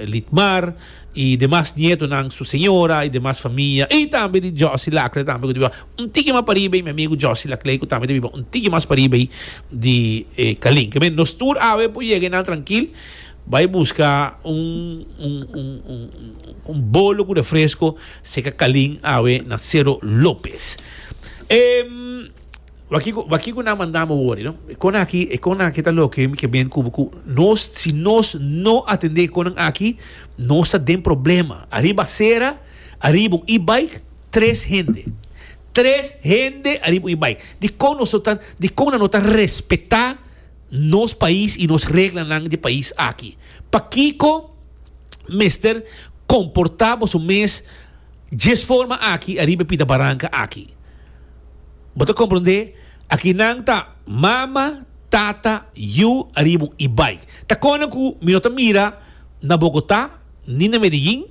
Litmar i demas nietonan, su señora i demas famia i tambe di Josy Laclay tambe ku ta biba. Un tiki mas pariba ei mi amigu Josy Laclay ku tambe ta biba un tiki mas pariba ei di e Kalin. Ke men nos tur awe por yega einan trankil bai buska un un un un bolo ku refresko serka Kalin awe na Sero Lopez. E wak kiko wak kiko nan manda mi wori no e konan aki e konan aki ta loke mi ke bint kubu ku nos si nos no atende e konan aki nos ta den problema ariba sera ariba un e-bike. Tres hende. Tres hende ariba un bai. Dikon nos no ta, dikon nan no ta respetá nos pais i nos reglanan di pais aki? Pakiko mester komportá boso mes djes forma aki ariba e pita baranka aki? Bo ta komprondé? Aki nan ta mama, tata, yu ariba un i bai. Ta kòrda ku mi no ta mira na Bogotá ni na Medellín?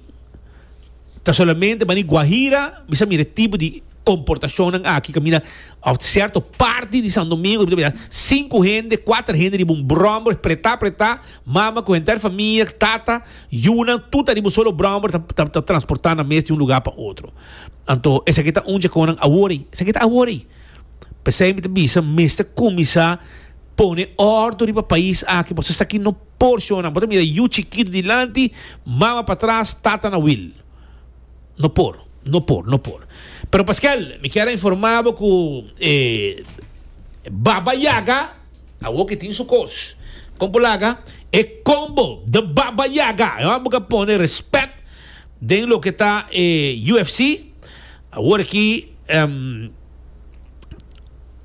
Ta solamente bani Guajira mi sa mira e tipo di comportacionnan aki caminda of cierto parti di Santo Domingo mi ta mira cinco hende cuater hende riba un bromber preta preta mama cu henter famia tata yunan tur ta riba un solo bromber ta ta transporta nan mes di un lugar pa otro anto esaki ta un djeconnan awor esaki ta awor ey pesey mi ta bisa mester cuminsa pone ordo riba pais aki pasobra esaki no Porshonnan, bo ta mira yu chikitu dilanti, mama patras, tata na wil. No por, no por, no por. Pero paskel mi kier a informa bo ku e Baba Yaga awor ke tin su kos. Kon por laga e combo The Baba Yaga? E hòmber ka pone respet den loke ta e UFC. Awor aki, ehm.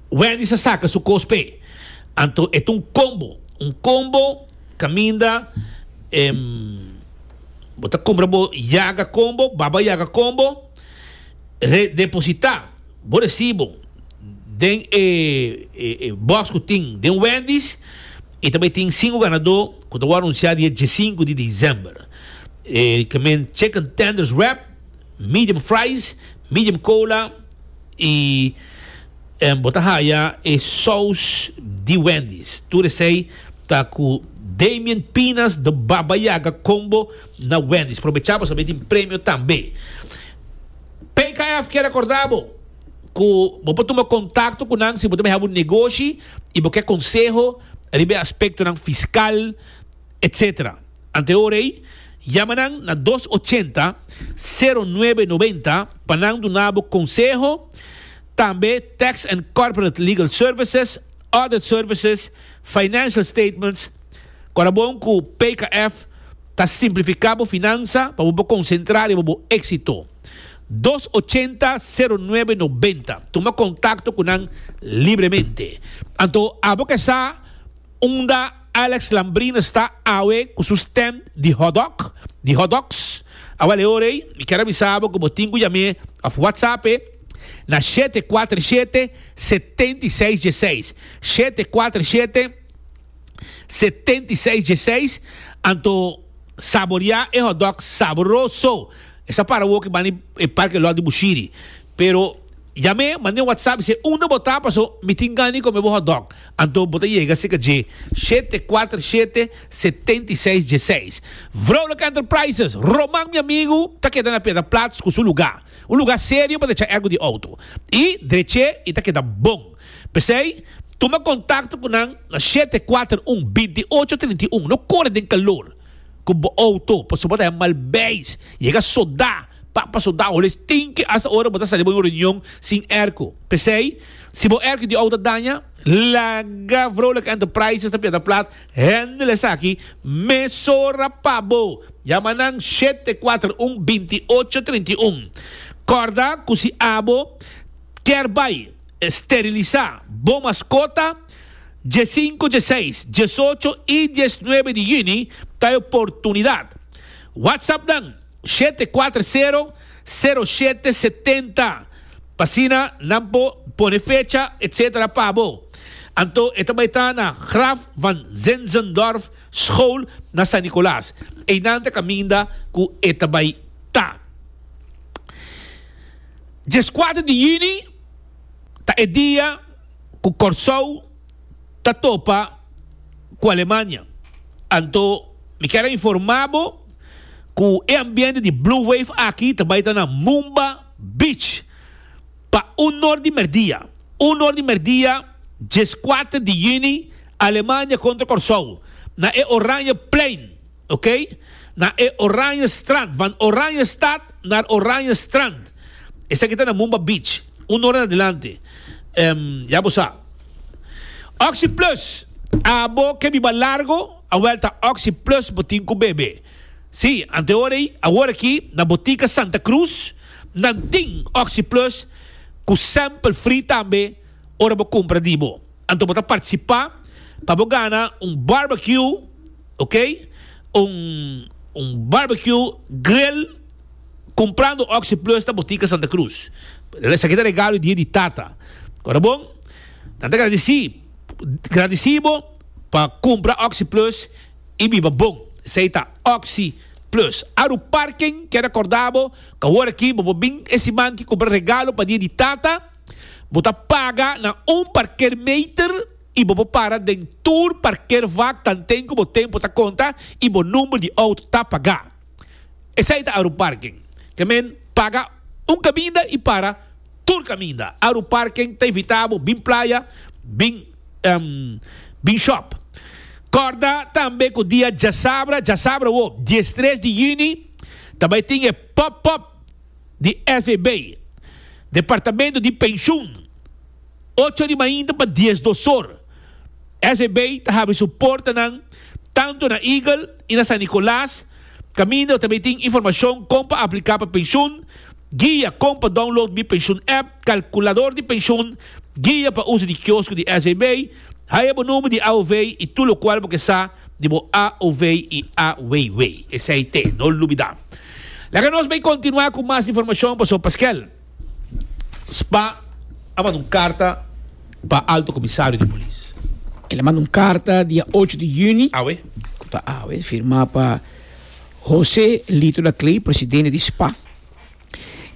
Wendy's a saca su cos p'e. Anto e ta un combo. Un combo caminda em, bo ta cumbra bo yaga combo, baba yaga combo, re deposita bo recibo den e, e, e box cu tin den Wendy's y ta bay tin cinco ganador cu ta wor anuncia dia diescinco di december. E, ke men chicken tenders wrap, medium fries, medium cola, y bo ta haya e saus di Wendy's. Tur esey ta cu Damien Pinas the Baba Yaga combo na Wendy's. Probecha bo sabi tin premio tambe. PKF kier recorda bo cu bo por tuma contacto cu nan si bo ta mihaba un negoshi y bo ke conseho riba e aspectonan fiscal, etc. Ante ora ei, yama nan na dos ochenta, sero nuebe noventa pa nan duna bo konseho, tambe Tax and Corporate Legal Services, Audit Services, Financial Statements, ku a bon ku PKF ta simplifiká bo finansa pa bo por konsentrá riba bo éksito. Dos ochenta, sero nuebe noventa. Tuma kontakto ku nan libremente. Anto abo ke sa. Unda Alex Lambrina sta awe cu su stand di hotdog, di hot dogs? Awal e ora ey, mi kier a bisa bo cu bo tin cu yam'e of whatsap'e na shete cuater shete, setenta y seis dieseis, shete cuater shete, setenta y seis dieseis, anto saboria e hotdog sabroso, esa para awo cu bani e parke lot di Bushiri, pero. Yam'é, mand'é un whatsapp i sê, Unda bo ta? Paso mi tin gana di kome bo hotdog. Anto bo ta yega serka dje shete kuater shete setenta i seis dieseis. Vrouwelijke Enterprises, Roman mi amigu, ta keda na Piedra Platz ku su lugá. Un lugá serio pa decha ergo di outo. I drech'é i ta keda bon. P'esei, tuma kontakto ku nan na shete kuater un binti ocho trinta i un. No kore den kalor. ku bo outo pasobra bo ta haña mal beis yega sodá pa pa sodá hola es tin ke hasta ora bo ta sali bo un reunion sin erko p'esei si bo erko di outo a daña laga Vrolijk Enterprises ta piata plat hendel esaki mesora pa bo yama nan shete kuater un binti ocho trinta i un kòrda ku si abo kier bai. Sterilisá bo maskota dje sinku, dje seis, djes ocho i djes nuebe di yüni ta e oportunidat. WhatsApp nan, shete kuater sero, sero shete setenta, pa asina nan por pone fecha etc. Pa bo. Anto e ta bai ta na Graf van Zinzendorf School na San Nicolas. Einan ta kaminda ku e ta bai ta. Djes kuater di yüni. ta e dia cu Corsou ta topa cu Alemania. Anto mi kier a informa bo cu e ambiente di Blue Wave aki ta bay ta na Mumba Beach pa un or di merdia. Un or di merdia diescuater di juni Alemania contra Corsou na e Oranje Plein. ok, na e Oranje Strand, van Oranje Stad naar Oranje Strand, esaki ta na Mumba Beach, un ora na dilanti, em, ya bo sa. Oxi Plus, abo ke biba largo, awel ta Oxi Plus bo tin ku bebe. Sí, anteora ei, awor aki na Botica Santa Cruz nan tin Oxi Plus ku sample free tambe, ora bo cumpra di bo. Anto bo ta participa pa bo gana un barbecue, ok, un un barbecue grill cumprando Oxi Plus na Botica Santa Cruz. Esaki ta regalo di dia di tata. Ora bon, nan ta gradici gradici bo pa cumpra Oxi Plus y biba bon. Esey ta Oxi Plus. Aru Parken kier a corda bo cu awor aki bo por bin e siman aki cumpra regalo pa dia di tata. Bo ta paga na un parkeermeter y bo por para den tur parkeervak tanten cu bo tempo ta conta y bo number di auto ta paga. Esai ta Aruparken. Te men paga un caminda y para tur caminda. Aruparken ta invita bo bin playa, bin bin shop. Corda tambe cu dia djasabra, djasabra wo, diestres di juni, ta bay tin e pop-up. di FEB, Departamento di Pensioen, ocho di mainta pa dies dosor. FEB ta habi su portanan tantu na Eagle i na San Nicolas, kaminda ta tin informashon kon pa apliká pa pensioen, guia kon pa download mi pensioen app, kalkulador di pensioen, guia pa uso di kiosko di FEB, Haya bo number di AOV y tur locual bo ke sa di bo AOV y AWW. Esey te, no lubida. Laga nos bay continua cu mas informacion paso Pasquel Spa a manda un carta pa Alto Comisario di Polis. El a manda un carta dia ocho di juni, Awe. cu ta awe, firma pa Jose Lito Laclay, presidente di Spa.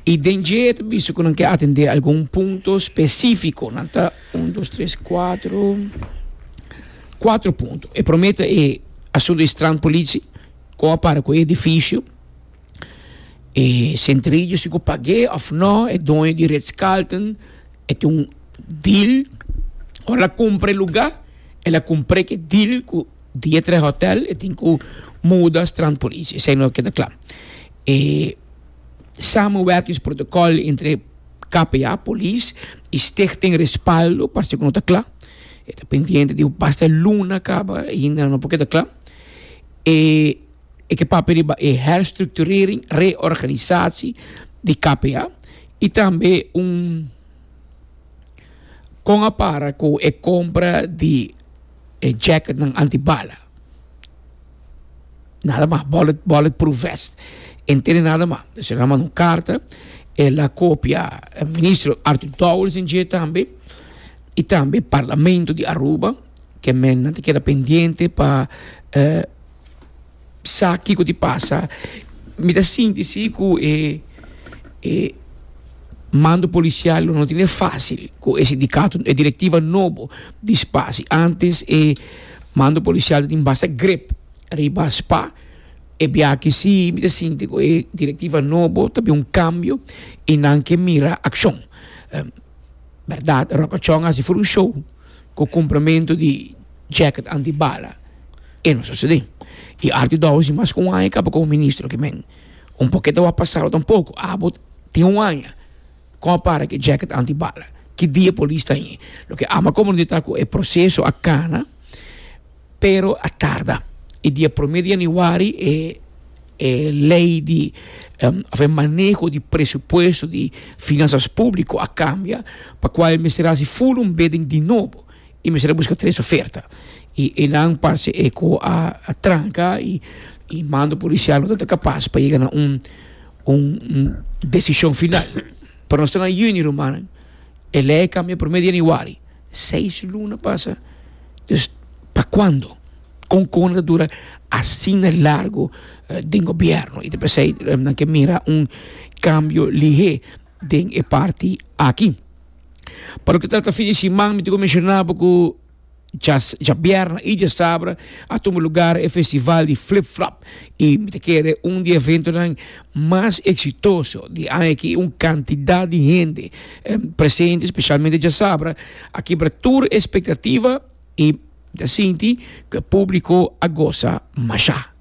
Y den dje e ta bisa cu nan ke atende algun punto specifico. Nan ta un, dos, tres, cuatro, cuatro punto. E prome ta e asunto di strandpolitie, con a para cu e edificio, e centrillo, si cu pag'é of no, e doño di Ritz-Carlton e tin un deal, ora el a cumpra e lugar, el a cumpre cu e deal cu Dia Tres Hotel, e tin cu muda strandpolitie. Esei no keda cla. E samenwerkings protokòl entre KPA, polis i Stichting Respaldo parse ku no ta kla. E ta pendiente di basta luna kaba i hinda nan no por keda kla. E e ke papia riba e herstrukturering, reorganisasi, di KPA i tambe un kon a para ku e kompra di. e jacketnan antibala, nada mas, bullet bullet proof vest e no tene nada mas. Entonces el a manda un carta, el a copia e ministro Arthur Dowers en dje tambe y tambe parlamento di Aruba, ke mennan ta keda pendiente pa Sa kiko tin pasa. Mi ta sinti si ku e mando polisial lo no tin e fasil ku e sindikato, e direktiva nobo di spa. Si antes e mando polisial tin basta grep riba spa, e biaki si mi ta sinti ku e direktiva nobo ta bin un kambio i nan ke mira akshon. Bèrdat, Ròkachòn a hasi for un show. ku kumprimentu di jacket antibala e no sosodé. I Artie Dowers di Mas ku un aña kaba komo ministro aki men. Un por ke ta wak pasado tampoco. Abo tin un aña kon a para ku e jacket antibala. Ki dia polis ta hei? Loke ama komo no di ta ku e proseso a kana. Pero a tarda. E dia promé di yanüari e e lei di òf e maneho di presupuesto di finansas públiko a kambia, pa kua e mester hasi full un bidding di nobo i mester a buska tres oferta. I e nan parse e ku a tranka i i mando polisial no tabata kapas pa yega na un un desishon final. Pero nos ta na yüni, rumannan. E lei kambia prome di januari, seis luna pasa, dus pa kuando kon kon nan ta dura asina largu den gobièrnu? I ta p'esei nan ke mira un kambio lihé den e parti aki. Pa loke ta trata fin di siman mi duna ku menshonabo ku. Djabierna y djasabra a tuma lugar e festival di Flip Flop y mi ta kere un di e eventonan mas exitoso di aña aki y un cantidad di hende presente specialmente djasabra a kibra tur e expectativa y mi ta sinti cu e publico a goza masha.